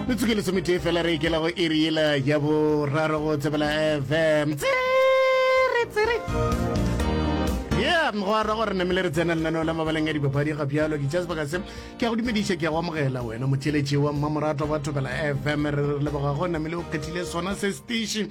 metsotso ke lesometee fela re ikela go iri yela ya boraro go tsebela fm tsere tsere ya go ara gore namele re tsena lenaneo la mabaleng a dipapadi ga bjalo ke tša sebaka se ke a go dumediša ke a go amogela wena motheletši wa mmamoratwa wa thobela fm re re leboga go namele o kgethile sona se station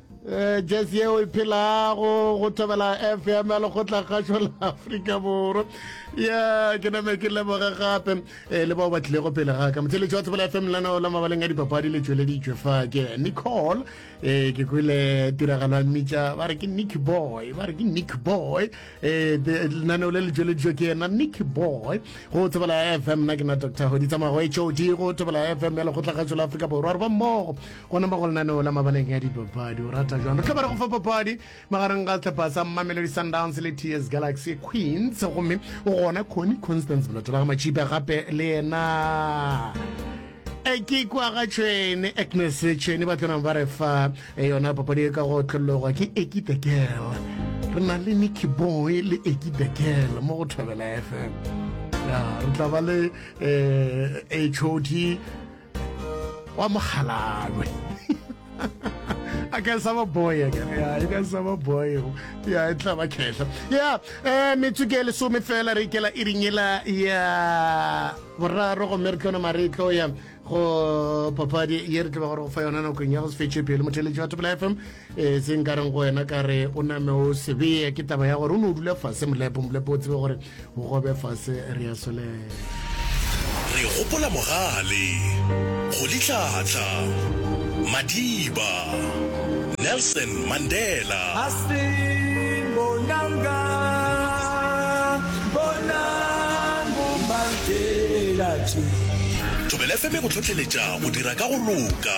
Eh, jazz yeo e phelago go thobela fm ya lekgotla kgašo la afrika borwa ya ke name ke leboge gape eh, le bao ba tlilego pele ga ka motheletši wa thobela fm lano la mabaleng a dipapadi le tšweleditšwe fa ke nicole eh, ke kwele tiragalo ya mmitša ba re ke nick boy ba re ke nick boy lenaneo le le tšweleditšwe ke ena nick boy go thobela fm na ke na dr goditsamagwe hod go thobela fm ya lekgotla kgašo la afrika borwa re ba mmogo Go nama go lenaneo la mabaleng ya dipapadi o rata jwang? Re tla ba re go fa papadi magareng ga sehlopha sa Mamelodi Sundowns le TS Galaxy Queens gomme o gona Connie Constance Boloto ba ga Matšhipa gape le yena e ke kwa ga tšhwene Agnes Tšhwene ba tlonang ba re fa e yona papadi e ka go tlhologwa ke Eki the Girl re na le Nicky Boy le Eki the Girl mo go Thobela FM re tla ba le um HOD wa mogalalwe I can save a boy again. Yeah, I can save a boy. Yeah, e tla ba khehla. Yeah, eh metsu ke lesome fela re ikela e ringela ya boraro go mere tlona maretlo ya go papadi ye re tla ba gore go fa yona nakong ya go se fetše pele motheletši wa topela fm e se nka reng go wena ka re o name o sebeye ke taba ya gore o ne o dula fase molepo molepo o tsebe gore o gobe fase re ya solela re gopola mogale go ditlhatla madiba nelson mandela thobelefeme go tlhotlheletša go dira ka go loka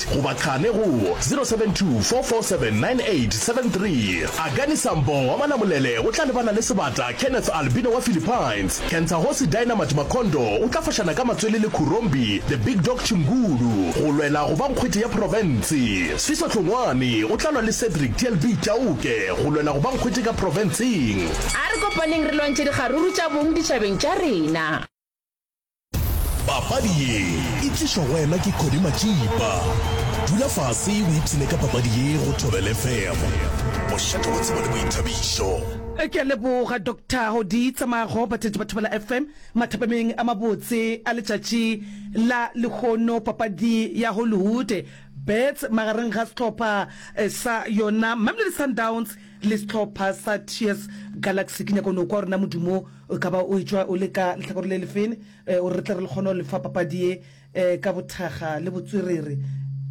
goba qhale go 0724479873. Agani Sambo wa Malamulele o tla lebana le sebata Kenneth Albino wa Philippines. Kentsahosi Dynamite Makhondo o tla fošana ka matswele le Khurombi The Big Dog Chingulu go lwela go ba nkgwete ya profense. Sfiso Hlongwane o tla lwa le Cedric TLB Chauke go lwela go ba nkgwete ka profenseng. A re kopaneng re lwantšhe dikgaruru tša bong ditšhabeng tša rena. papadi ye e tlišwa go wena ke kgodi matšipa dula fase o ipshine ka papadi ye go thobele fm bošate go tsebo le boithabišo ke a leboga doctor go di tsamayago batheetši ba thobela fm mathapameng a mabotse a letšatši la lehono papadi ya hollywood bets magareng ga setlhopha eh, sa yona mamelodi sundowns le setlhopha sa ts galaxy ke nyako nokwa rona modumo O ka ba o etšwa o le ka lehlakore le lefeng gore re tle re le kgone go le fa papadi ye ka bothakga le botswerere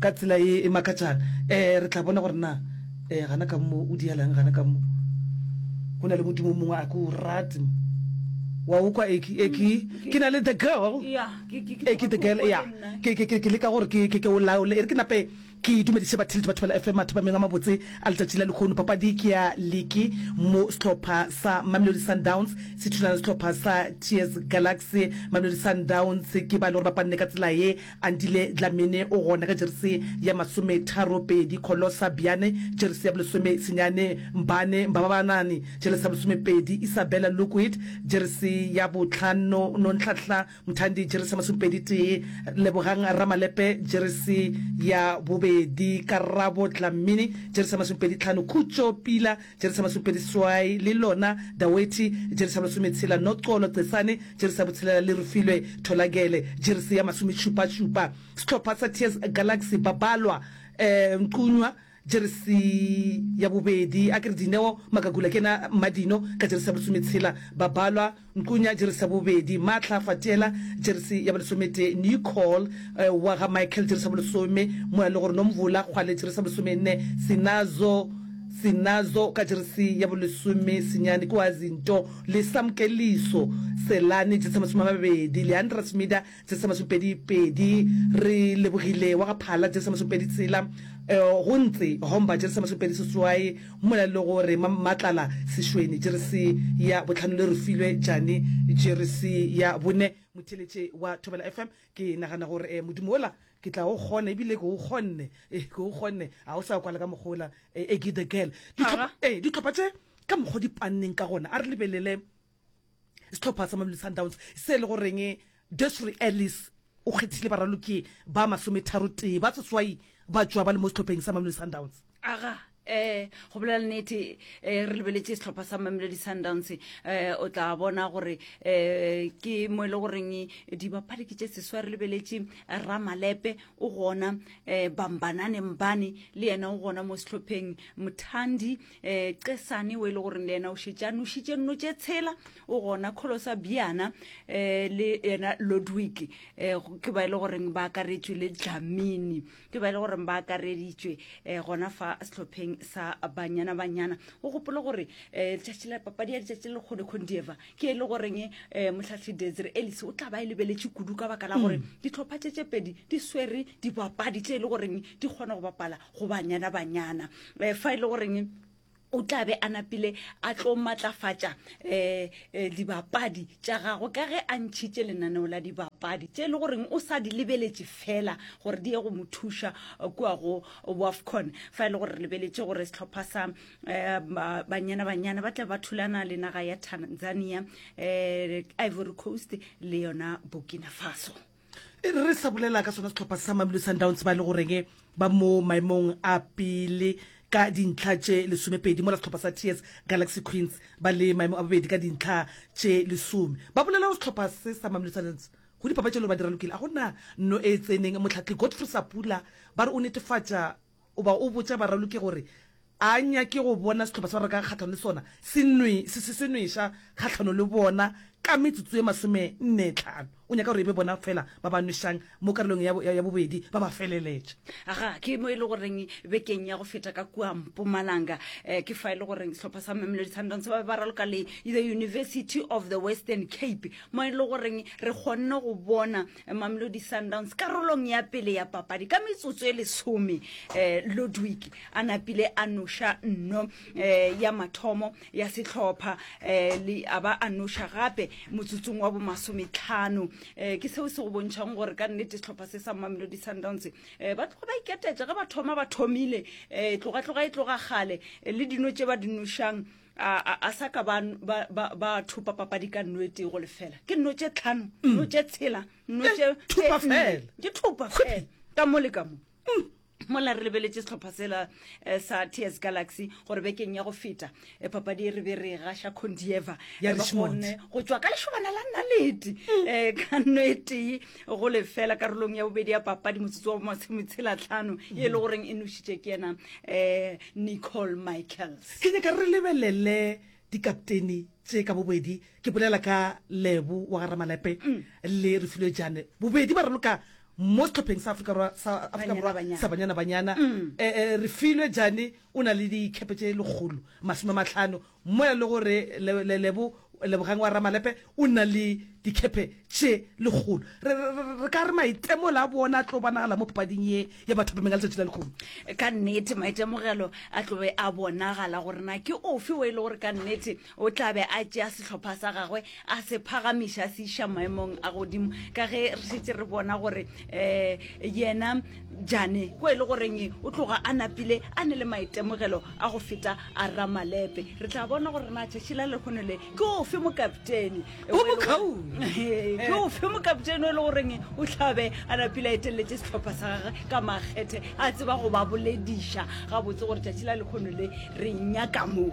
ka tsela ye e makatšang. Re tla bona gore na gana ka mo o dialang gana ka mo. Go na le modimo o mongwe a ke o rate mo. Wa o kwa Eki? Eki, ke na le the girl. Eki the girl, ya. Ke leka gore ke o laole e re ke nape. Ke dumediše batheli le batho ba la FM mathapameng a mabotse a letšatši la lekhono. Papadi ke ya liki mo sehlopha sa Mamelodi Sundowns se thulana le sehlopha sa TS Galaxy. Mamelodi Sundowns ke ba e le gore ba panne ka tsela ye. Andile Dlamini o gona ka jeresi ya masome tharo pedi, Kholosa Biyane jeresi ya bolesome senyane, Mbane Mbababanani jeresi ya bolesome pedi, Isabella Lukwit jeresi ya botlhano, Nonhlanhla Mthandi jeresi ya masomepedi tee, Lebogang Ramalepe jeresi ya bobedi, Karabo Dlamini jeresi ya masomepedi tlhano, Khutšo Pila jeresi ya masomepedi seswai, le Lona Dawethi jeresi ya masometshela, Noxolo Cesane jeresi ya botshelela le Refilwe Tholagele jeresi ya masomešupašupa. Sehlopha sa TS Galaxy ba balwa, Mqunywa, Jeresi ya bobedi, a ke re Dineo Makakula ke yena Mmadino, ka jeresi ya bolesome tshela, Babalwa Nkunya, jeresi ya bobedi, Maatla Fatiela, jeresi ya bolesometee, Nicole wa ga Michael, jeresi ya bolesome, Moya le gore Nomvula Kgwale, jeresi ya bolesomenne, Sinazo Sinazo ka jeresi ya bolesome senyane, ke wa Zinto le Samkeliso Selane, jeresi ya masome a mabedi, Leandra Smida Jese Masopedi pedi Re lebogile wa ga Phala Jese Masopedi tsela eh, Go ntse homba Jese Masopedi seswae Mmola le go re matlala sešweni Jeresi ya botlhano le re filwe jani Jeresi ya bone Motheletše wa Thobela FM Ke nagana gore eh, modimo ola ke tla o kgona ebile ke o kgonne eh, ke o kgonne a o sa kwala ka mokgola eh, Eggy the girl Ditlhopha- eh, ditlhopha tše ka mokgwa di panneng ka gona a re lebelele setlhopha sa mamelo sundowns se e le goreng desry ellis o kgethile baraloki ba masometharotee ba seswai ba tšwa ba le mo setlhopheng sa mamelo sundowns aga um go bolela nnete um re lebeletse setlhopha sa mamelodi sundowns um o tla bona gore um ke mo e le goreng dibapadi ke tše seswa re lebeletse ramalepe o gona um bambananeng bane le yena o gona mo setlhopheng mothandi um qesane o e le goreng le yena o šetše a nošitše nno tše tshela o gona kholo sa biana um le yena lodwick um ke ba e le goreng ba akaretšwe le dlamini ke ba e le goreng ba akareditšwe um gona fa sehlopheng sa banyana banyana o gopole gore um letšatši la papadi ya letšatši le lekgone condieva ke e le goreng um motlhatlhi desire elis o tla ba e lebeletše kudu ka baka la gore mm. ditlhopha tše tše pedi di swere dibapadi tše e le goreng di kgona go bapala go banyana banyana um fa e le goreng o tla be a napile a tlo matlafatša um dibapadi tša gagwe ka ge a ntšhitše lenaneo la dibapadi tše e le goreng o sa di lebeletše fela gore di ye go mo thuša eh, kua go wafcon fa e le gore re lebeletše gore setlhopha sa um banyana banyana ba tla ba thulana le naga ya tanzania um ivory coast le yona burkina faso e re re sa bolela ka sona setlhopha sa mamelo sundowns ba e le goreng ba mo maemong a pele ka dintlha tše lesomepedi mola setlhopha sa ts galaxy queens ba le maemo a bobedi ka dintlha tše lesome ba bolela go setlhopha se sa mamelo sundowns go dipapatšelo ba dira lokile a gona no e tseneng motlhatlhi godfrey sapula ba re o netefatša O ba o botša baraloki gore, A nyake go bona sehlopha sa reka kgahlano le sona se nwe, se, se, se nweša kgahlano le bona ka metsotso ye masomenne-tlhano? O nyaka gore e be bona feela ba ba nwešang mo karolong ya, ya, ya bobedi, ba ba feleletša. Ga ke mo e le goreng bekeng ya go feta ka kua Mpumalanga, eh, ke fa e le goreng sehlopha sa Mamelodi Sundowns ba be ba raloka le The University of the Western Cape, mo e le goreng re kgonne go bona Mamelodi Sundowns karolong ya pele ya papadi ka metsotso e lesome eh, Ludwig a napile a noša nno eh, ya mathomo ya sehlopha eh, le a ba a noša gape motsotsong wa bomasometlhano eh, ke seo se go bontšhang gore ka nnete sehlopha se sa Mamelodi Sundowns eh, ba tloga ba iketetša ge ba thoma ba thomile eh, tloga-tloga e tloga gale eh, le dino tše ba di nošang a sa ka ba thopa papadi ka nno e tego lefela ke nno tše tlhano mm. nno tše tshela nno eh, tše thopa fela ke thopa fela ka mo le ka mo mm. mola re lebeletse setlhopha sela eh, sa ts galaxy gore bekeng ya go feta eh, papadi e re be re gasha condieva gone go tswa ka lešobana la nnalete mm. ka nno e tee go lefela karolong ya bobedi ya papadi motsotso wa masometselatlhano e le goreng e nošitše ke yena um nicole michaels ke nyaka re lebelele dikapteni tše ka bobedi ke bolela ka lebo wa garamalepe mm. le re filwe jane bobedi ba raloka mo setlhopheng sa afrika borwa sa banyana banyana um mm. eh, eh, re filwe jane o na le dikhepe tše lekgolo masome matlhano Mo e lego re lebo, Lebogang wa Ramalepe o na le dikhepe tše lekgolo. Re, re, re ka re maitemogelo a bona a tlo bonagala mo papading ye ya bathapameng ya letšatši la lekgolo. Ka nnete, maitemogelo a tlo be a bonagala gore na ke ofe o e lego gore ka nnete o tla be a tšea sehlopha sa gagwe a se phagamiša a se iša maemong a godimo ka ge re šetse re bona gore um yena jane ko e le goreng o tloga a napile a ne le maitemogelo a go feta a ramalepe re tla bona gore na tšatši la lekgono le ke ofe mokaptene o bokaone ke ofe mokaptene o e le goreng o tlhabe a napile a eteleletse setlhopha sa gage ka makgethe a tseba go ba bolediša gabotse gore tšatši la lekgono le re nyaka moo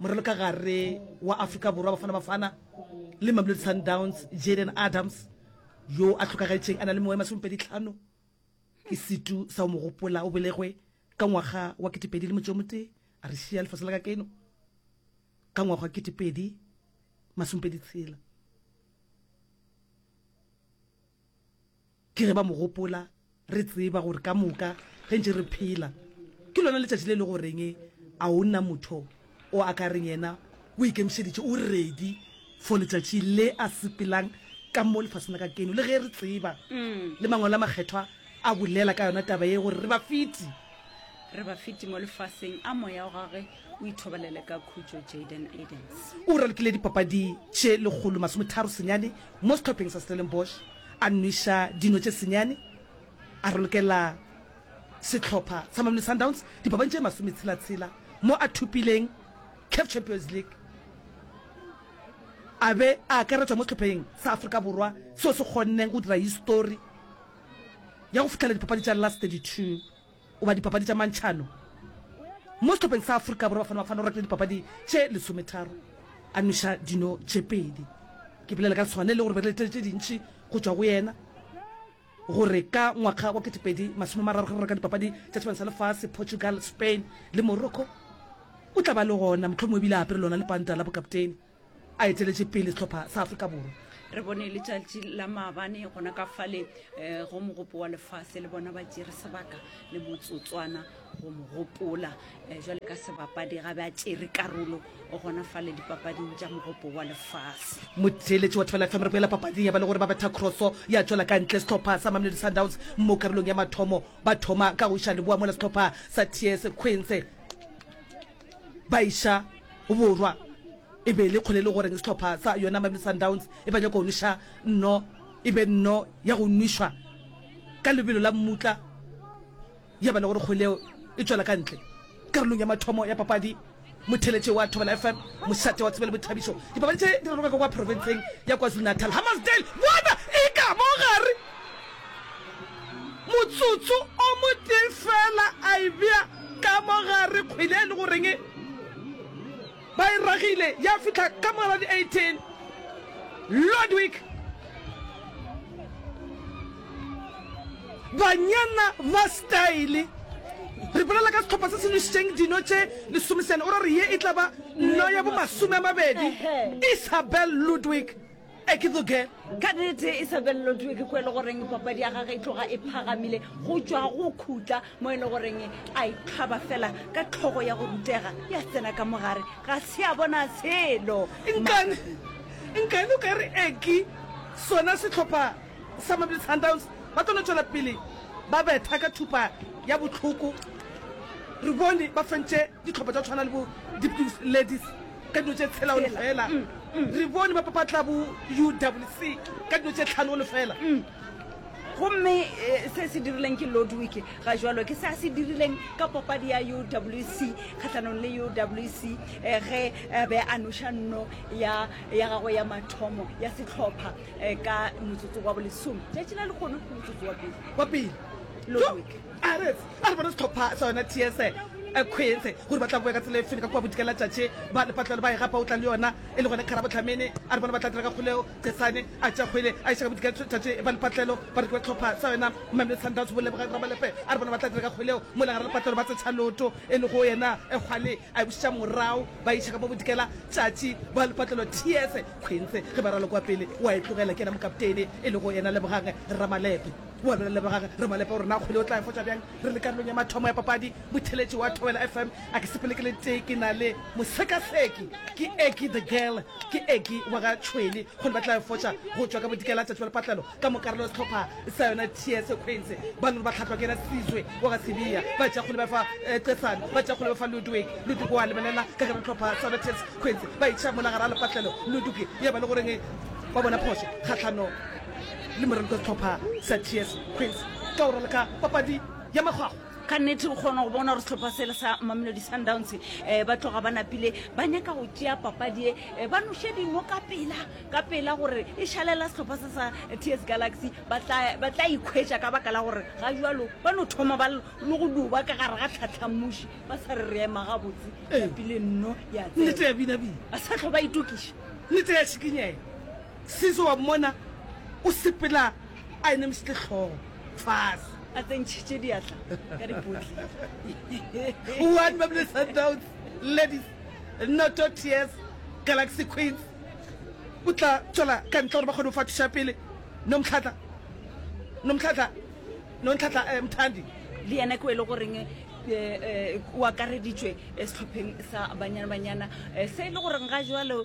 Morelo ka gare wa Afrika Borwa, Bafana Bafana le Mamelodi Sundowns, Jayden Adams, yo a hlokagetšeng a na le mengwaga e masomepedi tlhano, ke setu sa o mo gopola. O belegwe ka ngwaga wa ketepedi le motse o motee, a re šia lefase la ka keno ka ngwaga wa ketepedi masomepedi tshela. Ke ge ba mo gopola, re tseba gore ka moka ge ntše re phela ke lona letšatši le le goreng a o na motho o a ka reng yena o ikemišeditše, o ready for letšatši le a sepelang ka mo lefaseng la ka keno. Le ge re tseba le Mangwalo a Makgethwa a bolela ka yona taba ye gore re bafeti. Re bafeti mo lefaseng a moya wa gagwe o ithobalele ka khutšo, Jayden Edens. O ralokile dipapadi tše lekgolo masometharo senyane mo sehlopheng sa Stellenbosch. A nweša dino tše senyane, a rolokelela sehlopha sa Mamelodi Sundowns dipapadi tše masometshela-tshela mo a thopileng Caf Champions League. A be a akaretšwa mo sehlopheng sa Afrika Borwa seo se kgonne go dira histori ya go fihlelela dipapadi tša Last 32. Wa dipapadi tša mantšhano mo sehlopheng sa Afrika Borwa, Bafana Bafana o rekile dipapadi tše lesometharo a nweša dino tše pedi. Ke bolela ka lesogana le lego re be re letlele tše dintši go tšwa go yena gore ka ngwaga wa ketepedi masome mararo ge re reka dipapadi tša sebana sa lefase, Portugal, Spain le Morocco, o tla ba le gona, mohlomongwe ebile a apere lona lepanta la bokaptene. a eteletše pele sehlopha sa afrika borwa re bone letšatši la maabane gona ka fale um go mogopo wa lefase le bona ba tšere sebaka le motsotswana go mo gopola um eh, jale ka sebapadi ga be a tšere karolo o gona fale dipapading tša mogopo wa lefase motheeletši wa tefela fm re boela papading ya ba le gore ba betha crosso ya tswela ka ntle setlhopha sa mamelodi sundowns mo karolong ya mathomo ba thoma ka go iša leboa mola setlhopha sa ts queens ba iša go borwa e be le kgolele goreng sehlopha sa yona mameli sundowns e ba nyako go nweša nno e be nno ya go nwešwa ka lebelo la mmutla ya ba le gore kgoleo e tswela ka ntle karolong ya mathomo ya papadi motheletše wa thobela fm mošate wa tsebele bothabišo dipapadi tše di raloka ka kwa profenseng ya kwazulu natal hammersdale bona e ka mo gare Motsotso o motee feela a e bea ka mo gare, kgwele e le go reng ba e ragile ya fihla ka mo gare di 18. Ludwig Banyana ba style, re bolela ka sehlopha se se nwešitšeng dino tše lesomeseane, o ra gore ye e tla ba no ya bo masome a mabedi. Isabel Ludwig. a ke tsoke ka nete e sa belelo tue ke ko e le goreng papadi ya gage e tloga e phagamile go tšwa go khutla mo e le goreng a ikgaba fela ka tlhogo ya go rutega ya tsena ka mogare ga se a bona selo nkane nkane o ka re eki sona setlhopha sa mabele sundowns ba tlo no tšwela pele ba betha ka thupa ya botlhoko re bone ba fentše ditlhopha tša tshwana le bo dipus ladies ka dilo tše tshela o lefela re bone ba papatla bo uwc ka dilo tše tlhano o lefela gomme eh, se se dirileng ke lodwick ga jalo ke se a se dirileng ka papadi ya uwc kgatlhanong le uwc um eh, ge eh, be a noša nno ya ya gagwe ya mathomo ya setlhopha um ka motsotso wa bolesome tšatši la lekgono ke motsotso wa pele wa pele Ludwig. A re a re bone sehlopha sa yona TS Ekhwethe gore ba tla boya ka tsela e feng ka kua bodika la tšatši ba lepatlelo ba e gapa o tla le yona e le gone Kgarabohlamene. A re bone ba tla dira ka kgoleo Chesane a tšea kgwele a iša ka bodika la tšatši ba lepatlelo bareki ba sehlopha sa yona Mamelodi Sundowns Bolebogang Ramalepe a re bone ba tla dira ka kgoleo mola gara lepatlelo ba tsetšha loto e le go yena Kgwale a e bušetša morao ba iša ka mo bodika la tšatši ba lepatlelo TS Khwenthe ge ba ralo kua pele wa e tlogela ke yena mokaptene e le go yena Lebogang Ramalepe. O a bolelele bogage re mo lepa gore na kgwele o tla e fotša bjang. Re le karolong ya mathomo ya papadi, motheletši wa Thobela FM a ke sepele ke le tee ke na le mosekaseki. Ke Eggie the Girl. Ke Eggie wa ga Tšhwele. Kgwele ba tla e fotša go tšwa ka Bodikela letšatši la lepatlelo ka mokarolo wa sehlopha sa yona TS Queens. Ba no re ba hlahlwa ke yena Sizwe wa ga Sibiya. Ba tšea kgwele ba e fa Cesane. Ba tšea kgwele ba fa Ludwig. Ludwig o a lebelela ka gare sehlopha sa yona TS Queens. Ba e tšea mola gare ga lepatlelo. Ludwig ya ba le goreng wa bona phošo kgahlanong le morento setlhopha sa ts queens ka go raloka papadi ya makgwakgwa ka nnete o kgona go bona gore setlhopha sele sa mamelodi sundowns um eh, ba tloga ba napile ba nyaka go tšea papadi e eh, ba noše dino ka pela ka pela gore e šalela setlhopha se sa ts galaxy ba tla ikhwetša ka baka la gore ga jalo ba no thoma ba le go duba ka gare ga tlhatlhamuši ba sa re re ema gabotse ya pele nno ya ba sa tlho ba itokiša nete ya šikinyela Sisi wa mmona o sepela a enemisitse hlogo fase. A tsentšhitše diatla ka dipotli. One Mamelodi Sundowns ladies noto TS Galaxy Queens. O tla tšwela ka ntle gore ba kgone go fa thušo ya pele. Nomtlhatla Nomtlhatla Nontlhatla eh, Mthandi. Le yena ke o e le goreng eh, eh, o akareditšwe eh, sehlopheng sa Banyana Banyana eh, se e le goreng ga jwalo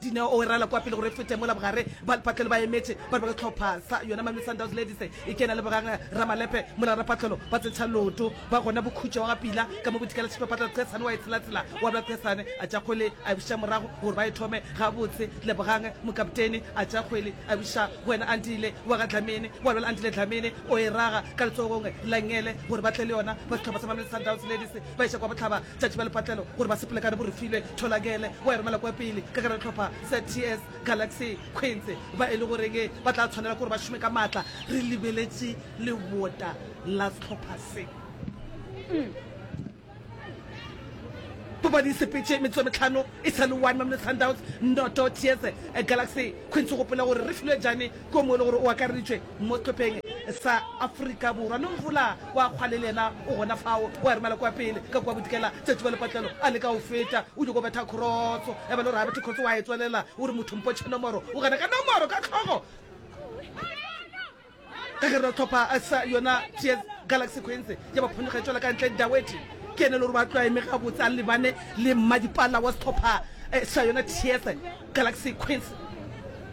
Dineo o e rala kwa pele gore e fete mola bogare. Balpatlelo ba emetše ba re ba sehlopha sa yona Mamelodi Sundowns Ladies e kena le boganga. Ramalepe mola rapatlelo ba tsentšha leoto ba gona bokhutšo wa ga Pila ka mo bodikela tšhipa patlelo Qhesane wa e tshelatshela wa bla Qhesane a tša kgwele a e bušetša morago gore ba e thome gabotse. Lebogang mokaptene a tša kgwele a e bušetša go wena Andile wa ga Dlamini wa lwela Andile Dlamini o e raga ka letsogong la Ngele gore ba tle le yona ba sehlopha sa Mamelodi Sundowns Ladies ba iša kwa bohlaba. Tšatši ba lepatlelo gore ba sepelekane bo re filwe tholakele wa e romela kwa pele ka gare tlhopha ZTS Galaxy Queens ba e le goreng ba tla tshwanela gore ba šome ka maatla re lebeletše lebota la sehlopha se Papadi e sepetše metsotso metlhano e sa le one Mamelodi Sundowns noto TS Galaxy Queens gopela gore re filwe jane ko mo e le gore o akareditšwe mo sehlopheng sa Afrika Borwa, mme Mvula wa kgwale le yena o gona fao, o a romela kwa pele ka kua Bodikela, Tsatsi wa Lepatlelo a leka go feta, o nyoko betha khorotso, ya ba le gore a bethe khorotso, wa e tswelela, o re motho mpotšhe nomoro, o gana ka nomoro ka tlhogo, ka gare ga sehlopha sa yona TS Galaxy Queens, ya ba phonyoga e tswela ka ntle, Dawethi ke yena le gore ba tloa eme gabotse, a lebane le mmadipala wa sehlopha sa yona TS Galaxy Queens.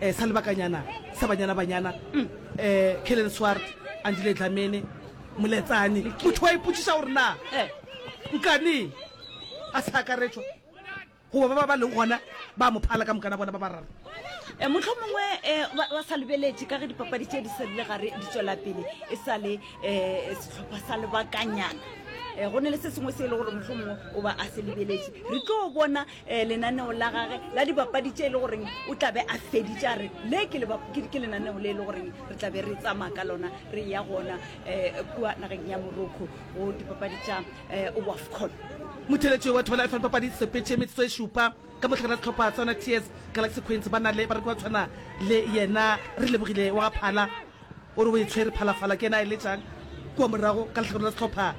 um sa lebakanyana sa banyana banyana um kellen swart andile dlamene moletsane motho wa ipotšiša gore na nkane a sa akaretšwa goba ba ba ba leng gona ba mo phala ka mokana bona ba bararo Eh, motlho mongwe eh, ba ba sa lebeletše ka ge dipapadi tše di serile gare di tswela pele e sa le um setlhopha sa lebakanyana um go ne le se sengwe se e le gore motlho mongwe o ba a se lebeletše re tlo bona um lenaneo la gage la dibapadi tše e le goreng o tlabe a feditše a re le ke lenaneo le e le goreng re tlabe re tsamaya ka lona re ya gona um kua nageng ya morocco go dipapadi tša um wafcon motheletši wa thobela fm papadi sepetše metsotso e šupa ka mohlakana setlhopha sa yona ts galaxy queens ba na le bareki ba tshwana le yena re lebogile wa ga phala O re o e tshwere phalafala ke yena a eletšang kua morago ka lehlakoreng la sehlopha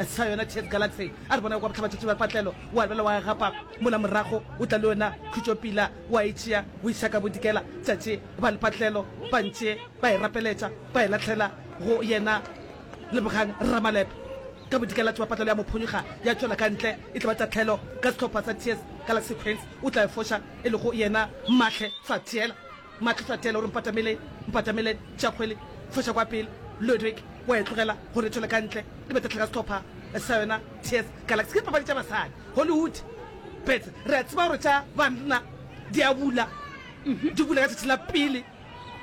sa yona TS Galaxy. A re bona kwa bohlabatšatši ba patlelo o a lwela wa gapa mola morago o tla le yona khutšopila wa e tšea o iša ka bodikela tšatši ba le patlelo ba ntše ba e rapeletša ba e lahlela go yena Lebogang Ramalepe. Ka bodikelatši ba patlelo ya mo phonyokga ya tšwela ka ntle e tlo ba tahlelo ka sehlopha sa TS Galaxy Queens o tla e foša e lego yena Mahle Fathiela. Matlhohlatela o re, Mpatameleng, mpatameleng, Tšakgwele, foša kwa pele, Ludwig, wa e tlogela gore e thole ka ntle, le betatlha ka sehlopha sa yona, TS Galaxy. Ke dipapadi tša basadi, Hollywood bets. Re a tseba gore tša banna di a bula, di bula ka tšatši la pele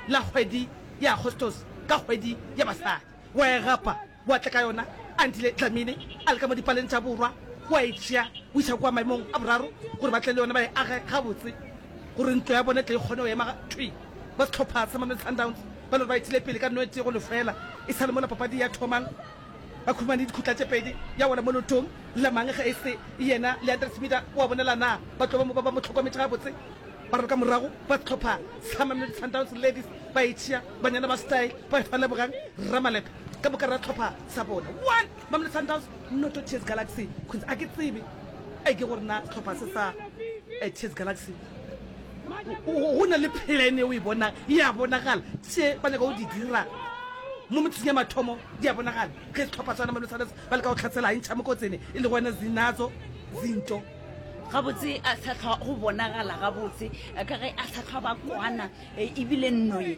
la kgwedi ya Agostose, ka kgwedi ya basadi. Wa e gapa? Wa tla ka yona Andile Dlamini a le ka mo dipaleng tša borwa, wa e tšea o isa kua maemong a boraro gore ba tle le yone ba e age gabotse gore ntlo ya bone tle e kgone go ema thwi. Ba sehlopha sa Mamelodi Sundowns ba lore ba itile pele ka noetee go lefeela e sa le mola papadi ya thomang. Ba khumane dikhutla tše pedi ya wela mo lotong la mang ge e se yena Leandre Tshimida wa bonela na ba tlo ba mo ba ba mo hlokometše gabotse. Ba re ka morago ba sehlopha sa Mamelodi Sundowns Ladies ba e tšea, banyana ba Style ba e fa Lebogang Ramalepe. Ka moka ra tlhopha sa bona. One, Mamelodi Sundowns, noto TS Galaxy. Kunz, a ke tsebe e ke gore na tlhopha se sa eh, TS Galaxy. Go na le plan e o e bonang ya bonagala tše ba nyaka go di dira mo metsing ya mathomo di a bonagala ge setlhopha swana Mamelodi Sundowns ba leka go tlhatsela e ntšha mokotsene e le gona zinatso zinto gabotse a sa tlhwa go bonagala gabotse ka ge a sa tlhwa ba kwana e, ebile nnoye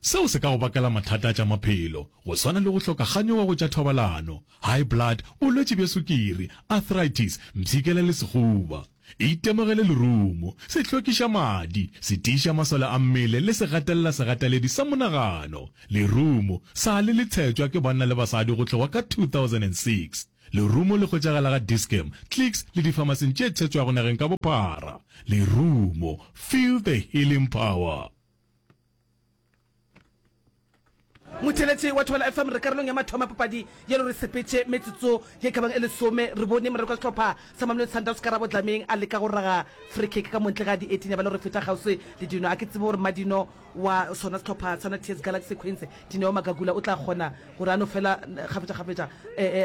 Seo se ka go bakela mathata a tša maphelo, go swana le go hloka kganyogo go tša thobalano, high blood, bolwetši bja sukiri, arthritis, mpshikela le sehuba. Itemogele lerumo, sehlokiša madi, setiiša masole a mmele le segatelela segateledi sa monagano. Lerumo, sa le le tshetšwa ke banna le basadi go hlogwa ka 2006. Lerumo le hwetšagala ga Dis-Chem, Clicks le difamasing tše tshetšwago nageng ka bophara. Lerumo, feel the healing power! motheletše wa thobela fm re karolong ya mathoma papadi yelo re sepetše metsotso ye kabang e lesome re bone moreko sehlopha sa mamelodi sundowns ka rabodlameng a leka go raga freekick ka montle ga di eighteen ya ba le gore feta kgauswi le dino a ke tsebe gore madino wa sona sehlopha sa natears galaxy queens dineo magagula o tla kgona gore a no fela kgafetšakgafetša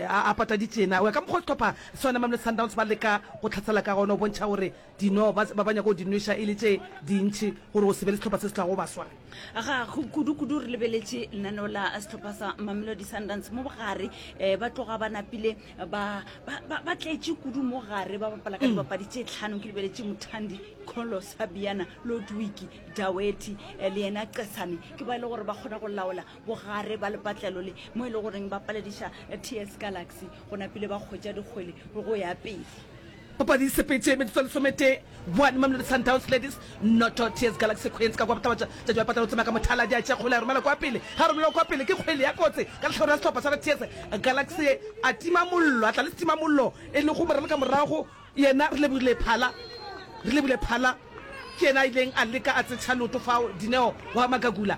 a pataditšena o ya ka mokgwa sehlopha sona mamelodi sundowns ba leka go tlhatsela ka gona o bontšha gore Dino ba, ba, ba nyaka go di nweša e le tše dintši gore go se be le sehlopha se se tlago ba swara. Ga go kudu-kudu re lebeletše lenaneo la sehlopha sa Mamelodi Sundowns mo bogare. Eh, ba tloga ba napile ba, ba, ba, ba tletše kudu mo gare ba bapala ka dibapadi tše tlhano. Ke lebeletše Muthandi, Kholo, Sabiana, Lodwiki, Daweti eh, le yena Cesane. Ke ba e le gore ba kgona go laola bogare ba lepatlelo le mo e le goreng ba palediša eh, TS Galaxy go napile ba kgwetša dikgwele go ya pele. Papadi e sepetše metsotso e lesometee, One Mamelodi Sundowns Ladies, noto TS Galaxy Queens ka kwa Botlabotša, Tša Joe Patla o tsoma ka mothala, di a tšea kgole a romela kwa pele, ge a romelwa kwa pele ke kgwele ya kotsi ka lehlabura ya sehlopha sa TS Galaxy, a tima mollo, a tla le setimamollo e lego Moralo ka morago, yena Relebogile Phala, Relebogile Phala ke yena a ileng a leka a tsetšha leoto fao, Dineo wa Magagula.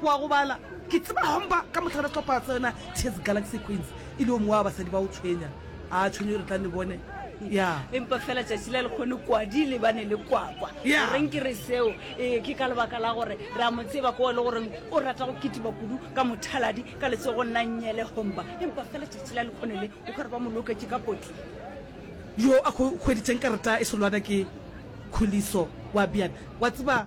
Wa go bala? Ke tseba Homba ka mohla re tlhopha tsena Tshezi Galaxy Queens. E le o mongwe wa basadi ba o tshwenya. A tshwenyo re tla ne bone. Ya. Empa fela tšatši la lekgone kwadi le bane le kwakwa. Ya. Goreng ke re seo? Ee, ke ka lebaka la gore re a mo tseba ko e le goreng o rata go kitima kudu ka mothaladi ka letsogo nna nnyele Homba. Empa fela tšatši la lekgone le o ka re ba mo loketše ka potli. Yo a go hweditšeng karata e solwana ke Khuliso. Wa bjana. Wa tseba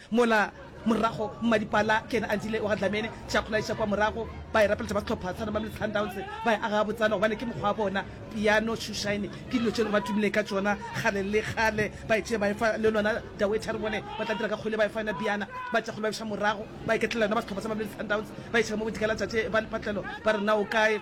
Mola morago Mmadipala ke yena a ntile wa ga Dlamini Tšakgolo a iša kwa morago, ba e rapeletša ba sehlopha sa Mamelodi Sundowns, ba e aga gabotsana gobane ke mokgwa wa bona. Piano Shoe Shine ke dilo tše e lego ba tumile ka tšona kgale le kgale, ba e tšee ba e fa le lona Daweetha re bone ba tla dira ka kgole, ba e fa yona Piana. Ba Tšakgolo ba buša morago, ba iketlela yona ba sehlopha sa Mamelodi Sundowns, ba iša ka mo bodika la tšatši ba lepatlelo ba re na o kae?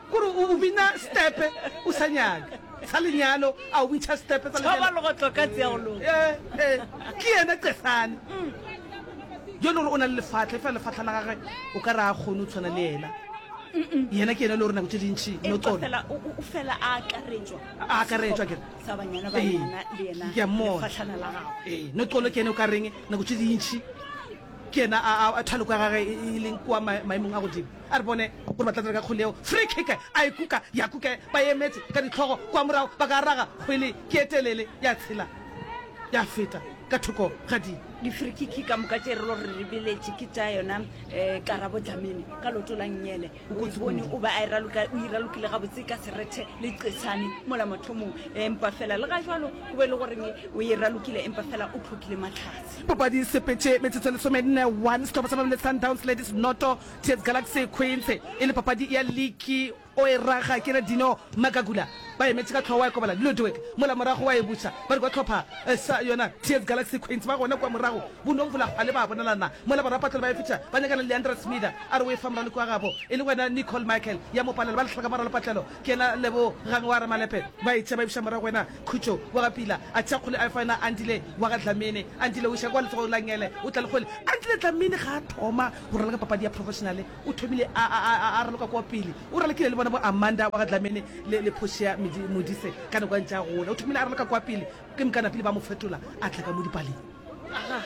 Gore o bina stepe o sa nyaka sa lenyalo a o bintšha stepe tsa lenyalo. Thoba legotlo ka tse ya go loka. Eh, eh, ke yena Cesane. Yo le gore o na le lefatlha, efa lefatlha la gage o ka re a kgone o tshwana le yena. Yena ke yena le gore nako tse dintšhi no Empa tsone. fela o o- o fela a akaretšwa. A akaretšwa ke re. Sa banyana Ee, banyana le yena. ke a mmona. lefatlhana la gago. Ee, no tsone ke ene o ka reng nako tse dintšhi ke yena a- a- a thaloko ya gage e- e leng kwa ma- maemong a godimo. A re bone gore ba tla dira ka kgole yeo. Free kick a e kuka, ya kuka ba emetse ka dihlogo kwa morago ba ka raga kgwele ke e telele ya tshela ya feta ka thoko ga di. Di-free kick ka moka tše re lo re ribeletše ke tša yona um Karabo Dlamini ka loto la Nnyele. O e bone o ba a e raloka, o e ralokile gabotse ka serethe le qetshane mola mathomong empa fela le ga jalo go be le goreng o e ralokile empa fela o tlhokile matlhatse. Papadi e sepetše metsotso e lesomenne, one sehlopha sa Mamelodi Sundowns Ladies noto. Tete Galaxy Queensy e le papadi ya liki o e raga ke Radino Magagula ba emetše ka tlhogo wa ekobala Ludwig mola morago wa e buša ba re kwa tlhopha sa yona Tete Galaxy Queensy ba gona kwa morago bo no mvula hwale ba bonalana mola barapatlole ba e fetša ba nyakana le Leandra Smitha a re o e fa moraloki wa gabo e le wena Nicole Michael ya mo palela ba lahla ka moralo patlelo ke yena Lebogang wa Ramalepe ba e tšea ba e buša morago wena Khutšo wa ga Pila a tšea kgole a e fa yona Andile wa ga Dlamini Andile o iša kwa letsogong la Ngele o tla le kgole Andile Dlamini ga a thoma go raloka papadi ya professionale, o thomile a a raloka kwa pele. O rile, Ke ile le bona bo Amanda wa ga Dlamini le le Portia Modise ka nako a ntše a gola. O thomile a raloka kwa pele, ke mokana pele ba mo fetola a tla ka mo dipaleng. Aga.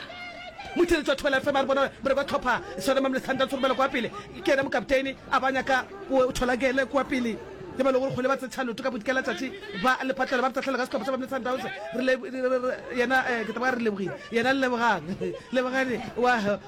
Motheeletši wa Thobela FM a re bona bereko ya tlhopha Soda Mamle Sundowns go romela kwa pele ke yena mokapteini, a ba nyaka o thola gele kwa pele le ba lego kgole ba tsetšha loto ka bodika la tšatši ba lepatlelo ba re tahlelo ka sehlopha sa Mamle Sundowns. Re yena ke taba re lebogile yena lebogang lebogane wa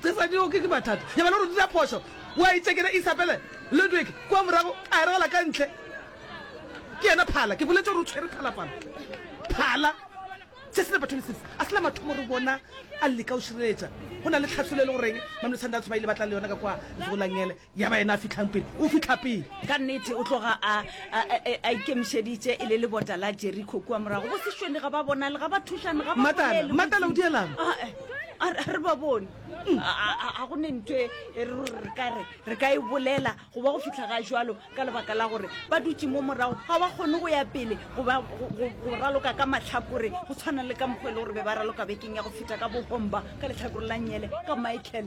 tsesadilo ke ke mathata ya bana gore dira phoso wa itsekena isabele ludwig kwa morago a eragala ka ntle ke yena phala ke boletse gore o tshwere phala phala phala se se batho lesese a sela mathomo re bona a leka o šireletsa go na le tlhatsolo e le goreng mamletsanda a tshoba ile batla le yona ka kwa lego langele ya ba yena a fitlhang pele o fitlha pele ka nnete o tloga a a ikemišeditše e le lebota la jeriko kua morago go sešwene ga ba bonale ga ba thušane ga matala o dielang ah, eh, ah, re ba bone mm. ga go ne ntho e, e re kare re ka e bolela go ba go fitlha ga jalo ka lebaka la gore ba dutse mo morago ga ba kgone go ya pele go raloka ka matlhakore go tshwana le ka mokgwa e le gore be ba raloka bekeng ya go feta ka bohomba ka letlhakore la nyele ka michael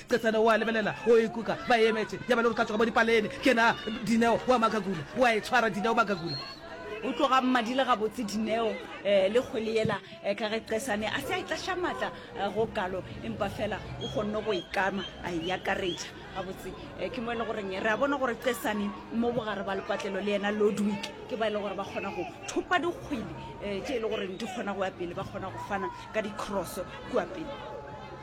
Stefano o a lebelela, o ikuka ba emetše, ya ba le gore ka tsoga mo dipalene. Ke na, Dineo, o a makakula. O a e tshwara, Dineo, o makakula. O tloga mmadile gabotse, Dineo, le kgwele yela, ka ge Qesane a se a e tlaša matla go kalo, empa feela o kgonne go e kama, a e akaretša. Gabotse, ke mo e le goreng re a bona gore Qesane mo bogare ba lepatlelo le yena Ludwig ke ba e le gore ba kgona go thopa dikgwele tše e le goreng di kgona go ya pele, ba kgona go fana ka di-cross kua pele.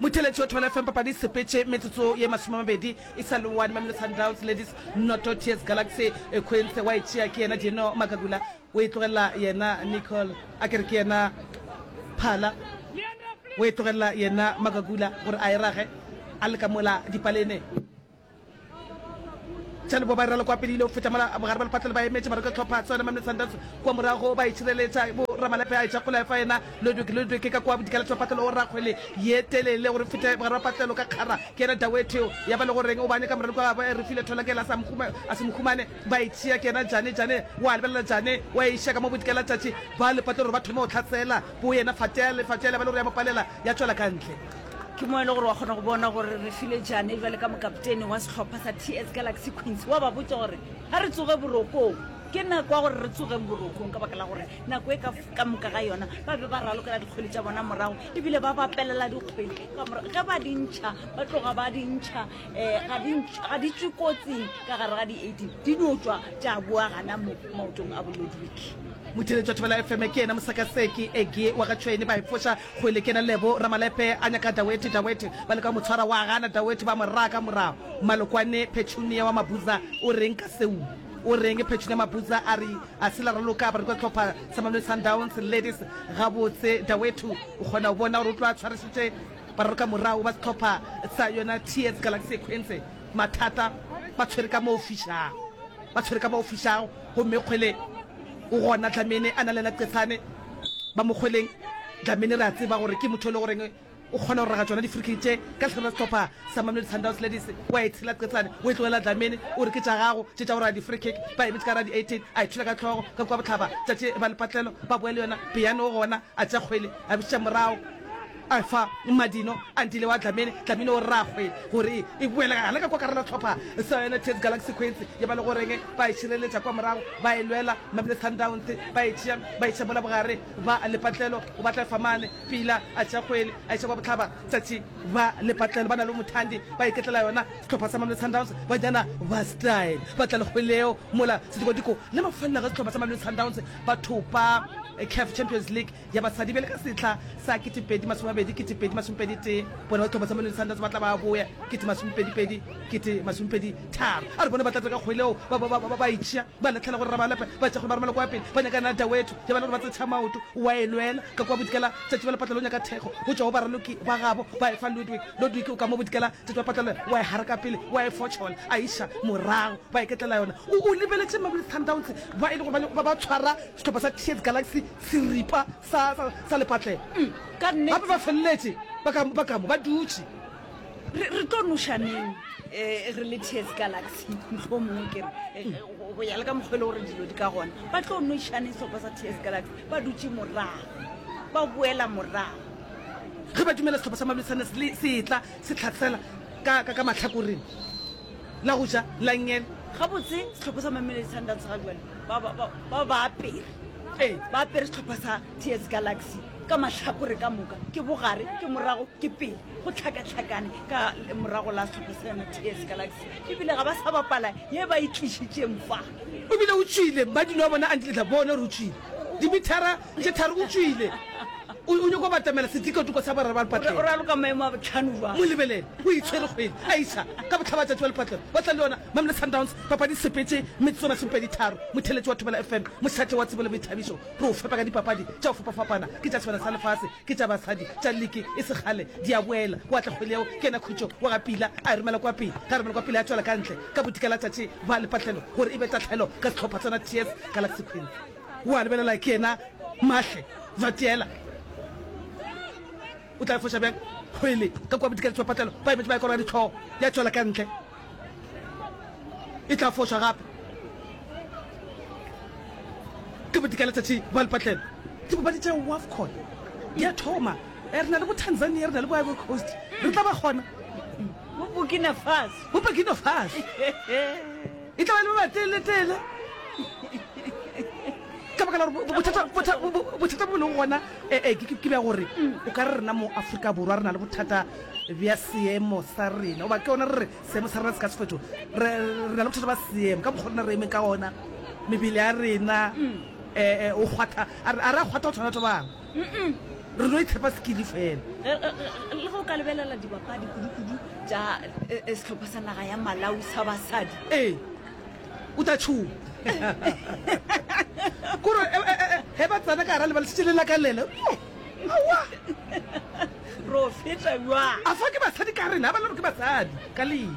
Motheletši wa 12FM papadi e sepetše metsotso ye masomemabedi e sa le one. Mamelodi Sundowns Ladies noto TS Galaxy e khwentse wa e tšea ke yena Dino Magagula o e tlogelela yena Nicole a kere ke yena Phala o e tlogelela yena Magagula gore a e rage a le ka mola dipalene. Tšhane bo ba iralo kwa pele ile go feta mola bogare ba lepatlelo ba emetše mara ka tlhopha tsone Mamne Sundowns kwa morago ba itšhireletša bo ramalepe a etša kola efa yena Ludwig Ludwig ka kwa bodikela tšwa patlelo o rakgwele ye telele gore fete bogare ba patlelo ka kgara ke yena Daweteo ya ba le goreng o ba nyaka morero kwa gabo e refile thola ke yena a se mohumane ba itšhia ke yena Jane Jane wa lebelela Jane wa iša ka mo bodikela tšatši ba lepatlelo gore ba thome go tlhatsela bo yena Fateale Fateale ba le gore ya mo palela ya tšwela ka ntle ke mo e le gore wa kgona go bona gore re file jane jale ka mokaptene wa sehlopha sa ts galaxy queens wa ba botsa gore ga re tsoge borokong ke nako ya gore re tsogeng borokong ka baka la gore nako e ka moka ga yona ba be ba ralokela dikgwele tša bona morago ebile ba bapelela dikgwele ka morago ge ba dintšha ba tloga ba dintšha um ga di tswe kotsing ka gare ga di-eighteen di no tswa tša boa gana mo maotong a bolodwiki motheletšatho ba la fm ke yena mosakaseki ege wa ga tšhwene ba efoša Kgwele ke ena Lebo, Ramalepe a nyaka Daweti, Daweti ba leka go mo tshwara, wa gana, Daweti ba mo raya ka morago. Malokwane, Petunia wa Mabuza o reng ka seo? O reng? Petunia Mabuza a re, A se la raloka bareki ba sehlopha sa Mamelodi Sundowns, Ladies? Gabotse, Daweti o kgona go bona gore o tlo a tshwarišitše baralokamorago ba sehlopha sa yona TS Galaxy Ekhwense. Mathata ba tshwere ka mo o fišago, ba tshwere ka mo o fišago. Gomme kgwele o gona, Dlamini a na le yena qetsane ba mo kgweleng. Dlamini re a tseba gore ke motho yo e lego goreng o kgona go raga tšona di-free kick tše ka lehlare la sehlopha sa Mamelodi Sundowns Ladies. O a e tshela qetsane, o e tlogela Dlamini, o re ke tša gago tše tša go raga di-free kick. Ba emetše ka gare ga di-eighteen, a e thula ka hlogo ka kua bohlaba, tšatši e ba lepatlelo, ba bowa le yona. Peyane o gona, a tšea kgwele, a e bušetša morago. A fa Madino a ntile wa Dlamini, Dlamini o rragwe gore e, e boele gana ka kwa karela tlhopha sa yone Tete Galaxy Queens ye ba le goreng ba e šireletša kwa morago ba e lwela Mamelodi Sundowns ba e tšea ba e tšea mola bogare ba lepatlelo o batla efa mane pila a tšea kgwele a iša kwa botlhaba tsatši ba lepatlelo ba na le mothandi ba iketlela yona sehlopha sa Mamelodi Sundowns banyana ba style ba tla le kgweleo mola sedikodiko le mafelelo ga sehlopha sa Mamelodi Sundowns ba thopa CAF Champions League ya basadi bjale ka sehla sa 2020, 2021, bona ditlhopha tsa Mamelodi Sundowns ba tla ba boya 2022, 2023. A re bona ba tla dira ka kgoeleo ba ba ba ba ba itšea ba lahlela gore Rabalepe ba tšea gore ba romela kwa pele ba nyakana le Dauetu ya ba le gore ba tsetšha maoto wa e lwela ka kwa Bodikela tšatši ba le patlelo nyaka thekgo go tšwa go baraloki ba gabo ba e fa Ludwig Ludwig o ka mo Bodikela tšatši ba patlelo wa e haraka pele wa e fotšhola a iša morago ba iketlela yona o o lebeletše Mamelodi Sundowns ba e le gore ba ba tshwara Sehlopha sa Tears Galaxy seripa sa, sa, sa lepatlelo. Ka nnete. Gape ba feleletše ba ka, ba ka mo, ba dutše. Re, re tlo noša neng eh, re le Tears Galaxy? Mohlomongwe ke re, eh, go- go ya le ka mokgwele gore dilo di ka gona, ba tlo noša neng sehlopha sa Tears Galaxy? Ba dutše morago, ba boela morago. Ge ba dumela sehlopha sa Mamelodi Sundowns le se etla se tlhatsela ka, ka, ka mahlakoreng. La go ja, la ngel. Gabotse, sehlopha sa Mamelodi Sundowns ga jwale ba ba ba ba ba apere. Ee, ba apere sehlopha sa TS Galaxy ka mahlakore ka moka, ke bogare, ke morago, ke pele, go hlakahlakane ka lemorago la sehlopha sa yona TS Galaxy, e bile ga ba sa bapala ye ba e tlišitšeng fa. O bile o tšwile, Madilo a bona a ntletla, Bona gore o tšwile dimithara. Ntše thari o tšwile. O o nyoko batamela sedikotoko sa boraro ba lepatlelo. O raloka maemo a botlhano ba. Mo lebelele. O itshwere kgwedi. Aisha, ka botlhaba tšatši wa lepatlelo. Ba tla le yona. Mamelodi Sundowns, papadi sepetše, metsotso masomepedi tharo. Motheletši wa Thobela FM, mošate wa tsebo le boithabišo. Re o fepa ka dipapadi tša go fapafapana. Ke tša sebana sa lefase, ke tša basadi, tša liki e se kgale di a boela. Wa tla kgwedi yeo, ke yena khutšo wa ga Pila. A e romela kwa pele. Ge a romela kwa pele, a tšwela ka ntle ka bodika la tšatši ba lepatlelo gore e be tahlelo ka sehlopha sona TS Galaxy Queens. O a lebelela ke yena Mahle Vatiela. O tla efoša bjang kgwele ka kua bodikaletši ba patlelo? Ba emetše ba ekora ditlhogo ya tšwela ka ntle. E tla fošwa gape ke bodikaletšatši ba lepatlelo. Dipapadi tša WAFCON di a thoma. Re na le bo Tanzania, re na le bo Ivory Coast. Re tla ba gona. Bo Burkina Faso. Bo Burkina Faso. E tla ba le ba teeletele ka baka la gore bothata- botha- bo- bo- bothata bo leng gona eh, eh, ke ke- ke bja gore o ka re rena mo aforika borwa re na le bothata bja seemo sa rena oba ke yona re re seemo sa rena se ka sefeto re re na le bothata ba seemo ka mokgwa rena re eme ka ona mebele ya rena um o kgwatha a re a re a kgwatha go tshwana batho ba bangwe re no itlhepa sekili fela le go ka lebelela dibapadi kudu-kudu tša eh, eh, sehlopha sa naga ya malawi sa basadi ee o tla tšhoa kore eh, eh, eh, he ba tsena ka gara lebalesitše le lakalele awa ro feta jwang a fa ke basadi ka rena a ba le gore ke basadi ka lene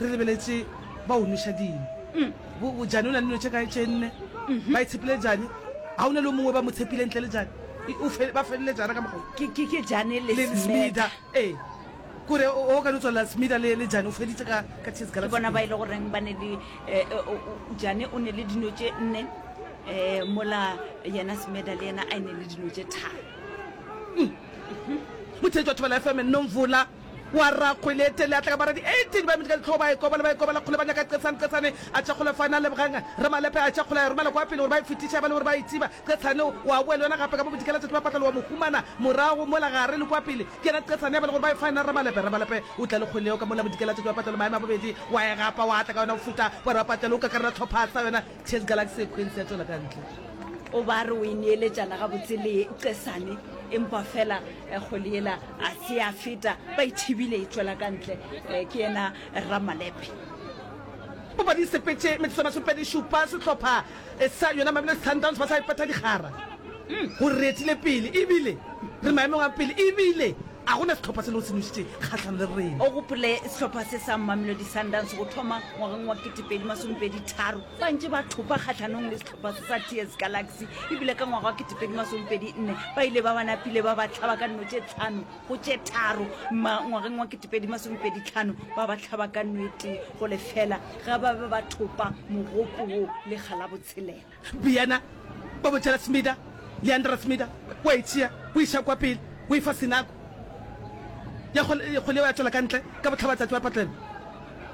Re lebeletše ba o nweša dino. Bo, bo Jane o na le dino tše kae tše nne? Ba e tshepile Jane. Ga o na le o mongwe ba mo tshepile ntle le Jane? E, o fe, ba feleletša yana ka mokgwa wo. Ke, ke, ke Jane le, le Smeda. Smeda, ee. Kore o, o ka no tswalela Smeda le, le Jane, o feditše ka, ka Tears Ke Galaxy bona ba e pele. le goreng ba ne le, e, e, o, o, Jane o ne le dino tše nne, e, mola yena Smeda le yena a e ne le dino tše tharo. Mothelete wa Thobela FM, Nomvula. Kua rragwe le etele a tla ka bara di 18 ba emetše ka dihlogo ba e kobala, ba e kobala kgole ba nyaka Qetsane, Qetsane a tšhakgola fane a lebogang Ramalepe a e tšhakgola a e romela kua pele gore ba e fetiše ba le gore ba e tsiba, Qetsane o a boa le yona gape ka bo bodikela tšatši ba patla le wa mo humana morago mola gare le kua pele ke yena Qetsane ya ba le gore ba e fa yena Ramalepe, Ramalepe o tla le kgole yeo ka mola bodikela tšatši ba patla le maemo a bobedi wa e gapa wa tla ka yona o feta wa re wa patla le o kakarela tlhopha sa yona Chase Galaxy e khwentse ya tšwela ka ntle. O ba re o e neeletšana gabotse le Qesane empa fela kgole yela A se ya feta, ba e thibile e tšwela ka ntle. Ke yena Ramalepe. Papadi e sepetše metsotso e masomepedi-šupa, sehlopha sa yona Mamelodi Sundowns ba sa ipeta dikgara. Go retile pele ebile re maemong a pele ebile a go na sehlopha se lego se nošitše kgahlanong le rena. O gopole sehlopha se sa Mamelodi Sundowns go thoma ngwageng wa ketepedi masomepedi-tharo ba ntše ba thopa kgahlanong le ba Satius Galaxy e bile ka ngwaga wa ketepedi masomepedi nne ba ile ba bana pile ba ba tlhaba ka nno tše tlhano go tše tharo ma ngwageng wa ketepedi masomepedi tlhano ba ba tlhaba ka nwete go lefela ga ba be ba thopa mogopo wo le ga la botshelela Biyana ba botšela Smida Leandra Smida wa e tšea o e ša kwa pele o e fa senako ya go ya go leo ya tšwela ka ntle ka botlhabatsatsi wa patlelo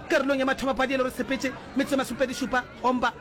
karolong ya mathomo padi e le gore sepetše metsotso masomepedi šupa gomba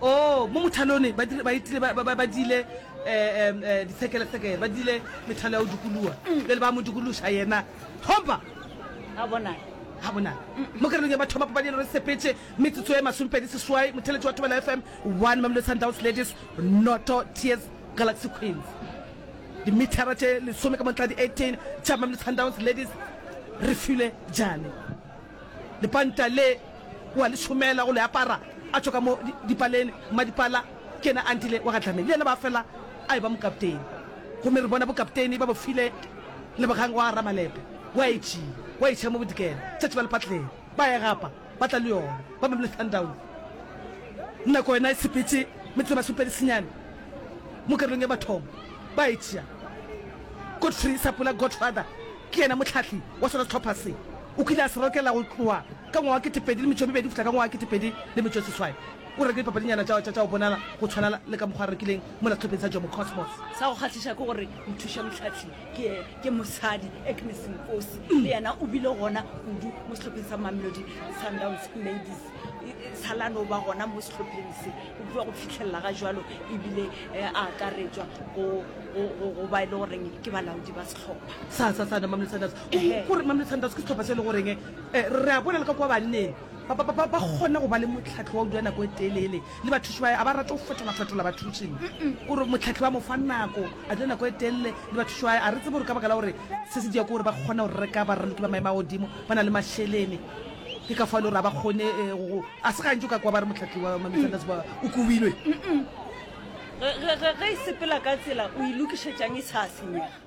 o mo mothalone ba dire- ba itile ba- ba ba- ba dile um ditshekelesekele ba dile methalo ya go dikoloa bjale ba mo dikološa yena thompa a bona ga bona mo kerelong ya bathoma papadi ya lore sepetse metsotso e masomepedi seswai motheletši wa thobela fm one mamelo sundowns ladies noto tears galaxy queens dimethara tše lesome ka montla di-18 tša mamelo sundowns ladies re file jane Lepanta le wa le šomela go le apara a tšwa ka mo dipaleng. Mmadipala ke yena a ntile wa ga Dlamini, le yena ba fela a eba mokapteini. Gomme re bona bokapteini ba bo file Lebogang wa ga Ramalepe. Wa e tšea, wa e tšea mo Bodikela, tšatši ba le patleng, ba e gapa, ba tla le yona, ba Mamelodi Sundowns. Nako yona e sepetše metsotso e masomepedi senyane mo karolong e mathomo, ba e tšea. Godfrey Sapula Godfather ke yena mohlahli wa sona sehlopha se. O kile a se rokela go tloa ka ngwaga wa ketepedi le metšo e mebedi go fihla ka ngwaga wa ketepedi le metšo e seswai. O reke dipapadinyana tša tša tša go bonala go tshwana le ka mokgwa a rekileng mola sehlopheng sa Jomo Cosmos. Sa go kgahliša ke gore mothušamohlahli ke ke mosadi, Agnes Nkosi, le yena o bile gona kudu mo sehlopheng sa Mamelodi Sundowns Ladies. Sa la no ba gona mo sehlopheng se o tloga go fihlelela ga jwalo e bile a akaretšwa go go go go ba e le goreng ke balaodi ba sehlopha sa sa sa Mamelodi Sundowns. ee gore mamele sundowns ke setlhopha se e le goreng eh, re a bona le ka kwa banneng ba ba- ba- ba kgona go ba le motlhatlho wa go dula nako e telele le bathuši ba a ba rate go fetolafetola bathušing gore motlhatlho ba mo fa nako a dula nako e telele le bathuši ba a re tsebe gore ka baka la gore se se dia ke gore ba kgona go reka baraloki ba maemo a godimo ba na le mašelene ke ka fa le gore a ba kgone eh, go- go- a se gantsi o ka kwa ba re motlhatlho wa mamesandas ba o kobilwe ge ge- ge- ge e sepela ka tsela o e lokišetsang e sa senyega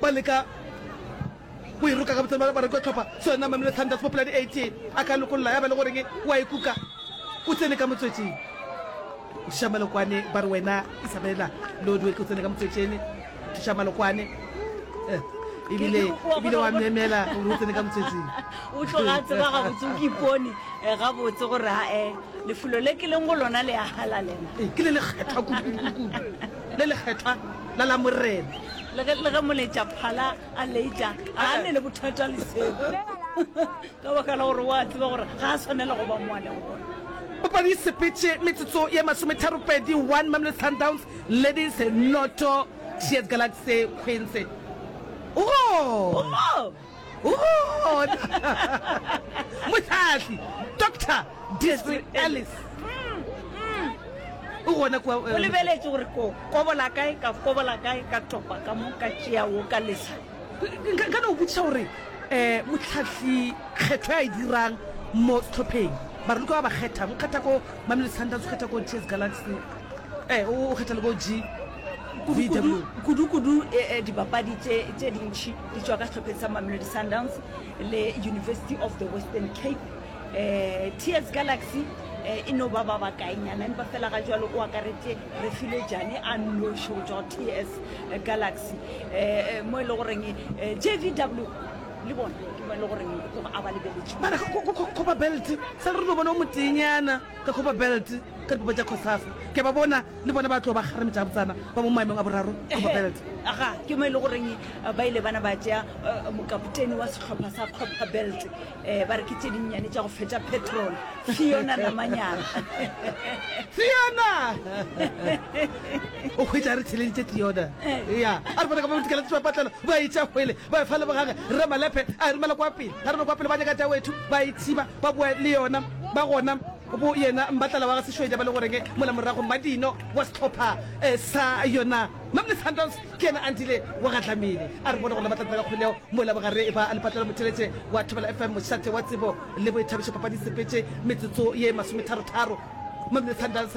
Ba leka go e roka ka botseno ba bareki wa tlhopha sona Mamelodi Sundowns mo polane AT a ka lokolola ya ba le goreng wa e kuka o tsene ka motswetseng. Thisha Malokwane ba re wena Isabella Lodwe ke o tsene ka motswetsene Thisha Malokwane eh. ebile ebile wa memela gore o tsene ka motswetseng o tloga tseba gabotse o kipone eh, gabotse gore ae lefulo le ke leng go lona le a halalela ke le lekgethwa kudu le lekgethwa la la Morena. Le ge, le ge moleetša phala a leetša, ga a ne le bothata le seo, ka baka la gore o a tseba gore ga a swanela go ba mo a lego gona. Papadi e sepetše metsotso ye masometharopedi, 1 Mamelodi Sundowns leading, 0 Cheers Galaxy Queens. Go. mohlahli doctor disri alice o gona kua o lebeletše gore ko kobola kae ka kobola kae ka topa ka mo ka tšea wo ka lesa nka no botšiša gore um motlhatlhi kgetho ya e dirang mo setlhopheng bare ka ba ba kgethang o kgetha ko mamelo sundowns o kgetha ko ts galaxy um o kgetha le ko g kudukudu dibapadi tše dintši di tšwa ka sehlopheng sa mamelodi sundowns le university of the western cape um tears galaxy e no ba ba bakaenyana empa fela ga jalo o akaretse re file jane a noši go tšwa ts galaxy um mo e le goreng jvw le bona ke mo e le goreng o tloga a ba lebeletse ba re go kgoba belt sa re no bona o motenyana Ka kgopa belt ka dipopa tša Cosafa. Ke a ba bona le bona ba tlo ba kgarame tša botsana ba mo maemong a boraro. Kgopa belt. Aga, ke mo e le goreng ba ile bana ba tšea mokapoteni wa sehlopha sa Kgopa belt, ba re ke tše dinnyane tša go fetša petrol. Fiona Namanyana. Fiona! O hwetša re theleditše Fiona. Eya, a re bona ka mo botikela tša patlelo, ba e tšea hwele, ba e fa le bogage. Rre Malephe a e romela kwa pele, a re no kwa pele ba nyaka tša wethu, ba e thiba. ba boa le yona ba gona bo yena mbatlala wa ga sešwedi ba le goreng mola morago madino wa setlhopha eh, sa yona mamle sundowns ke yena andile wa ga dlamile a re bone gona ba tla tsena ka kgoleo mola bogare ba a lepatlela motheletše wa thobela fm mošate wa tsebo le boithabišo papadi sepetše metsotso ye masometharo-tharo mamle sundowns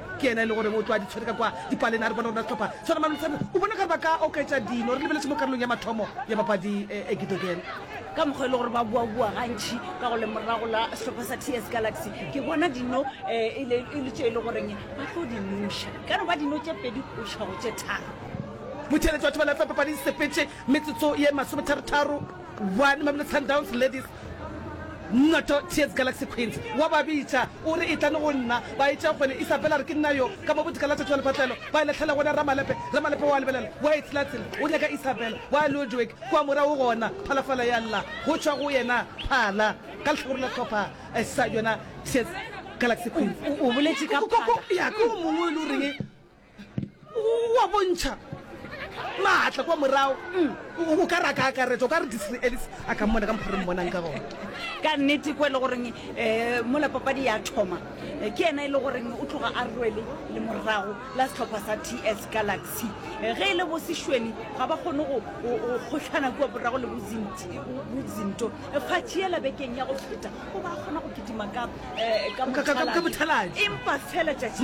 Ke yena e le goreng o tlo a di tshwere ka kwa dipalena. A re bona gore na sehlopha sa Roma le Luserne o bona ka re ba ka oketša dino. Re lebeletše mo karolong ya mathomo ya papadi e Gidogene. Ka mokgwa e le gore ba boaboa gantši ka go lemorago la sehlopha sa TS Galaxy, ke bona dino e le tše e le goreng ba tlo di nuša. Ka no ba dino tše pedi go iša go tše tharo. Botšheletšo batho ba lahlwa papading sepetše metsotso ye masometharo-tharo. Bwane Mamelodi Sundowns Ladies Noto TS Galaxy Queens. Wa ba bitša, o re, Etlane go nna. Ba etša kgole. Isabella a re, Ke nna yo. Ka mo bodika la tšatši wa lepatlelo, ba e lahlela gona Ramalepe. Ramalepe wa lebelela, wa e tselatsela, o nyaka Isabella. Wa Ludwig kua morago gona, phalafala ya lla go tšwa go yena phala ka lehlakore la sehlopha sa yona TS Galaxy Queens. O boletše ka phala. Ya, ke o mongwe yo e le goreng wa bontšha maatla kwa morago mm. o ka re a ka akaretsa o ka re disre alice a ka mmona ka mokgwa re mmonang ka gona ka nnete ko e le goreng um eh, mola papadi ya thoma eh, ke ena e le goreng o tloga a rwele le morago la setlhopha sa t s galaxy eh, ge e le bosešweni ga ba kgone go kgotlhana kua borago le bozinto fatšhiela bekeng ya go feta o ba kgona go kitima ka bothalatši empa fela tšatši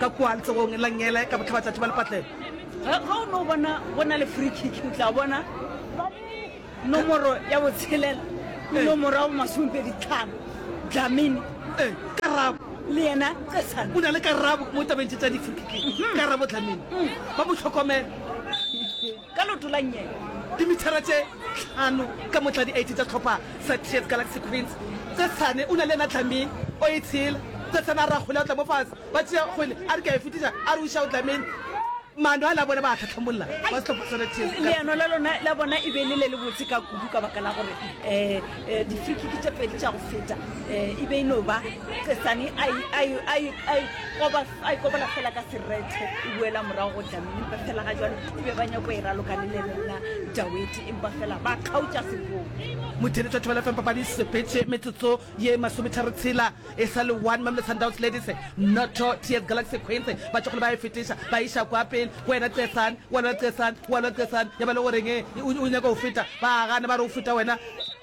ka kua letsogong la ngele ka bohlaba tšatši ba lepatlelo ga o no bona go na le free kick o tla bona nomoro ya botshelela le nomoro ya bomasomepedi tlhano dlamini Eh, karabo le yena tsesane o na le karabo mo tabeng tše tša di-free kick karabo dlamini ba mo tlhokomela Ka leoto la nnye dimithara tše tlhano ka mo tla di-8 tša sehlopha sa Tears Galaxy Queens. Tsetsane o na le yena Dlamini o e tshela. Tsetsane a re a kgole a o tla mo fase. Ba tšea kgole a re ke a e fetiša a re o išao Dlamini. Maano ale a bona ba a hlahlamolla ba sehlopha sona Tears Galaxy. Leano la lona la bona e be e le le le botse ka kudu ka baka la gore um di-free kick tše pedi tša go feta e be e no ba Tsetsane a e koba. a ikobola fela ka serethe e buela morago go jamini empa fela ga jalo e be ba nyako e raloka le lelena daweti empa fela ba kgaotša sekoo motheletswa thobela fm papadi e sepetše metsotso ye masometharo tshela e sa le one mamle sundowns ladies noto ts galaxy queens ba tsogole ba e fetiša ba iša kwa pele go wena cesan walwa cesan walwa cesan ya ba le goreng o nyaka go feta ba gane ba re o feta wena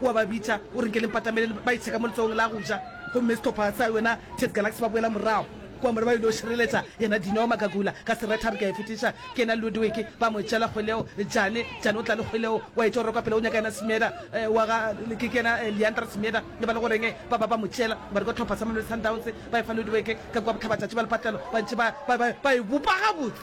O a ba bitša, o re, Nke le mpatamelele. Ba itsheka mo letsogong la go ja, gomme sehlopha sa yona Ted Galaxy ba boela morago kua mola ba ile go šireletša yena Dino Magagula ka seretha. A re, Ke a e fetiša, ke yena Ludwig. Ba mo tšeela kgweleo. Jane, Jane o tla le kgweleo, o a etšwa go rekwa pele, o nyaka yena Semeeda wa ga, ke, ke yena Leandra Semeeda. Le ba le go reng? Ba, ba, ba mo tšeela, ba rekwa tlhopha sa Mamelodi Sundowns, ba e fa Ludwig ka kua bohlabatšatši bja lepatlelo. Ba ntše ba, ba, ba, ba e bopa gabotse.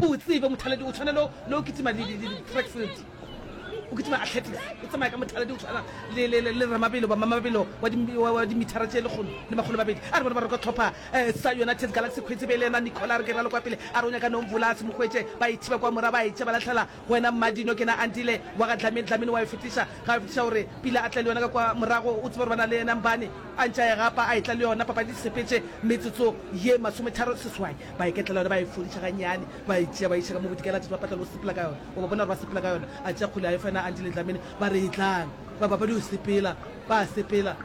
O tsebe mothaladi o tshwana le o kitima di-track field o kitima athletics o tsamaya ka mothaladi o tshwana le ramabelo bamamabelo wa dimithara tse lekgolo le makgolo mabedi a re bone ba roka tlhopha um sa united galaxy kgwetse be le yona nicola re ke ralo kwa pele a ronya ka nomvolas mokgwetse ba e thiba kwa mora ba e tse ba latlhela wena mmadino ke na andile wa ga dlamini dlamini wa e fetiša ga e fetiša gore pila a tle le yona ka kwa morago o tsebe gore ba na le yena mbane a ntša e gapa a e tla le yona papadi sepetse metsotso ye masometharo seswai ba eketlela yona ba e fodiša ganyane ba e tšea ba iša ka mo bodikela tšatši ba patlela o sepela ka yona o ba bona gore ba sepela ka yona a tšea kgole a e fa yona a ntile tlamene ba re e tlang ba bapadi o sepela ba sepela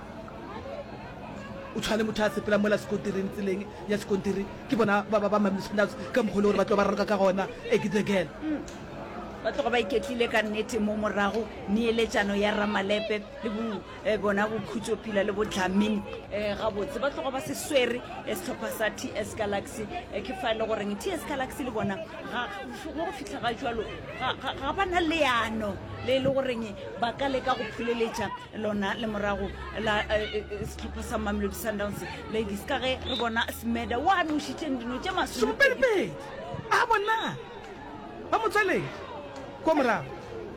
o tshwane motho a sepela mola sekontiring tseleng ya sekontiri ke bona ba ba ba mamile spinax ka mokgole gore ba tlo ba raloka ka gona e ke the girl ba tloga ba iketlile ka nnete mo morago neeletšano ya ramalepe le bo um bona bokhutso pila le bodlamini um gabotse ba tlogo ba se swere eh, setlhopha sa t s galaxy um ke fa e le goreng t s galaxy le bona mo go fitlha ga jalo ga ba na leano le e le goreng ba ka leka go phuleletša lona le morago la setlhopha sa mamelodi sundowns ladies ka ge re bona smeda wa nošitšeng dino tše masomepedi a bona ba motswaledi ko morago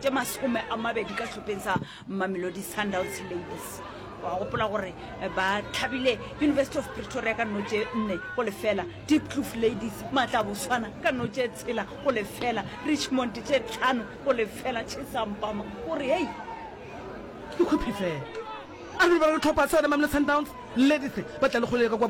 tše masome a mabedi ka tlhopheng sa mamelodi sundowns ladies wa gopola gore eh, ba tlhabile university of pretoria ka notše nne go lefela deep cloof ladies maatla boswana ka notše tshela go lefela richmond tše tlhano go lefela chesampama gore hei ke khophi fela a re ba re tlhopha sa yone mamelo sundowns ladies ba tla le kgolele ka kwa